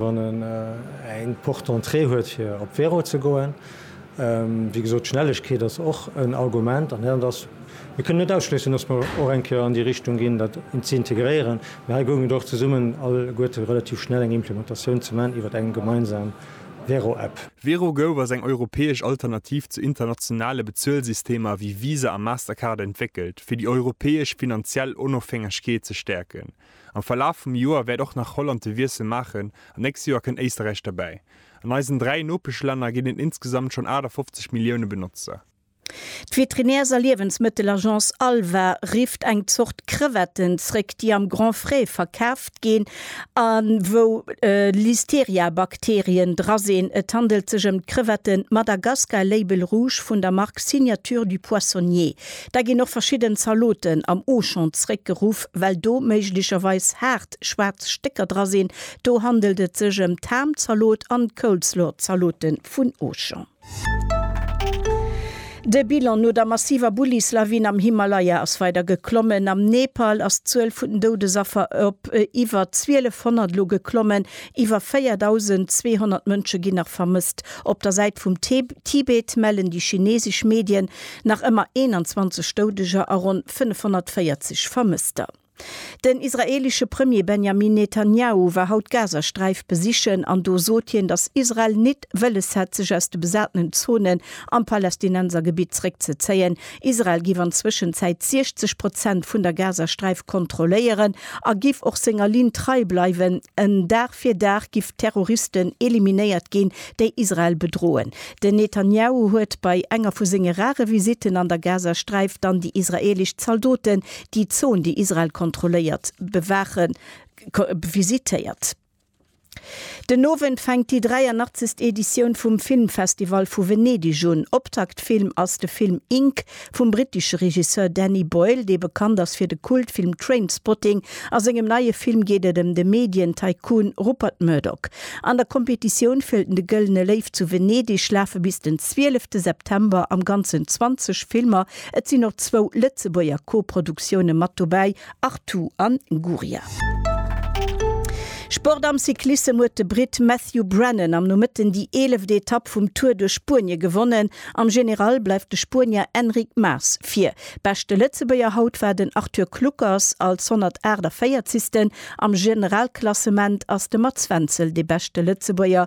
Wann en eng Porte d'entrée huet fir op Véro ze goen, wéi gesot, d'Schnellegkeet ass och en Argument an dat ass, mir kënnen net ausschléissen, dass mer och eng Kéier an déi Richtung ginn, dat ze integréieren. Mee hei goung et och zesummen alleguerte relativ schnell eng Implementatioun ze man iwwert eng gemeinsam Véro-App. Véro gouf als eng europäesch Alternativ zu internationale Bezuelsystemer wéi Visa a Mastercard entwéckelt, fir déi europäesch finanziell Onofhängegkeet ze stäerken. Am Verlaf vum Joer wäert och nach Holland de Wiessel maachen an d'nächst Joer kënnt Éisterräich derbäi. An eisen dräi Nopeschlänner ginn et insgesamt schonn 58 Millioune Benotzer. D'Veterinärs a Liewensmëttelagence Alva rifft eng Zort Crevetten zréck, déi am Grand Frais verkaaft ginn a wou Listeria-Bakterien dra sinn. Et handelt sech ëm d'Crevetten Madagascar Label Rouge vun der Mark Signature du Poissonnier. Da ginn och verschidden Zaloten am Auchan zréckgeruff, well do méiglecherweis haart schwaarz Stécker dra sinn. Do handelt et sech ëm d'Ham-Zalot an d'Coleslaw-Zalote vun Auchan. De Bilan no der massiver Bullislawin am Himalaya ass weider geklommen. Am Nepal ass d'Zuel vun den Doudesaffer op iwwer 1.200 elo geklommen. Iwwer 4.200 Mënsche ginn nach vermësst. Op der Säit vum Tibet mellen déi chinesesch Medien, Nach ëmmer 21 Doudeger a ronn 540 Vermësster. Den israeelesche Premier Benjamin Netanjahu war haut d'Gazasträif besichen an do sot hien, datt Israel nit wëlles hätt sech aus de besatenen Zonen am Palästinensergebitt zréckzezéien. Israel giff an Zwëschenzäit 60 Prozent vun der Gazasträif kontrolléieren a giff och senger Linn trei bleiwen. Dag fir Dag giff Terroristen eliminéiert ginn, déi Israel bedroen. Den Netanjahu huet bei enger vu senge rare Visitten an der Gazasträif dann déi israeelesch Zaldoten, déi d'Zon, déi Israel kontrolléiert, bewaachen, visitéiert. Den Owend fänkt déi 83. Editioun vum Filmfestival vu Venedig un. Optaktfilm ass de Film Ink, Vum brittesche Regisseur Danny Boyle, dee bekannt ass fir de Kultfilm Trainspotting, a sengem neie Film geet et ëm de Medien-Tycoon Rupert Murdoch. An der Competitioun fir de Gëllene Léiw zu Venedeg lafe bis den 12 September am Ganzen 20 Filmer. Et sinn och zwou Lëtzebuerger Co-Produktioune mat dobäi Artù an Guria. Sport am Cyclissem huet de Britt Matthew Brennan am Nomëtten déi eeleft Etapp vum Tour duerch Spuenie gewonnen. Am General bleift de Spuenier Enric Mas vir. Beschte Lëtzebuerger haut war den Arthur Kluckers als 148. Am Generalklassement ass de Mats Wenzel de beschte Lëtzebuerger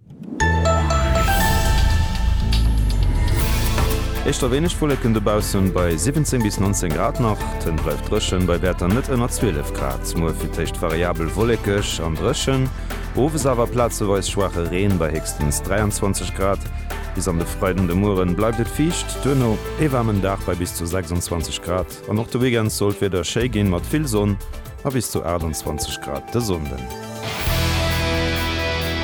Éischter wéineg Wolleken dobaussen, bei 17 bis 19 Grad nach. D'Hënt bleift dréchen, bei Wäerter net ënner 12 Grad. Muer fir d'éischt variabel wollekeg an dréchen, owes awer plazeweis schwaache Reen bei héchstens 23 Grad. Bis an de Freiden de Mueren bleift et fiicht, duerno ee waarmen Dag bei bis zu 26 Grad. An och de Weekend soll d'Wieder schéi ginn, mat vill Sonn a bis zu 28 Grad de Sonnden.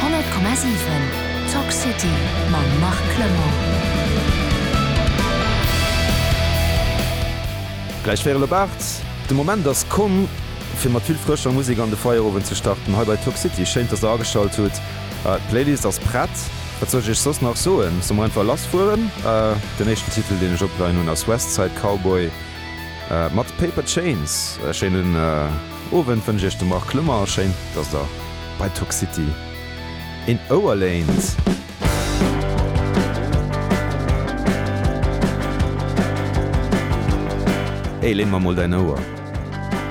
100,7 Talk City mam Marc Clement. Gläich wieren op 8. De Moment ass komm, fir mat vill frëscher Musek an de Feierowend ze starten. Hei bei Talk City, schéin dass der ageschalt hutt. D'Playlist ass prett. Wat soll ech iech soss nach soen? Soll mer einfach lass fueren? Den éischten Titel deen ech opgelaien hunn ass West Side Cowboy mat Paper Chains. E schéinen Owend wënsch iech de Marc Clement a schéin dass der bei Toxicity een Ouer léint. Hey, léin mer mol däin Ouer.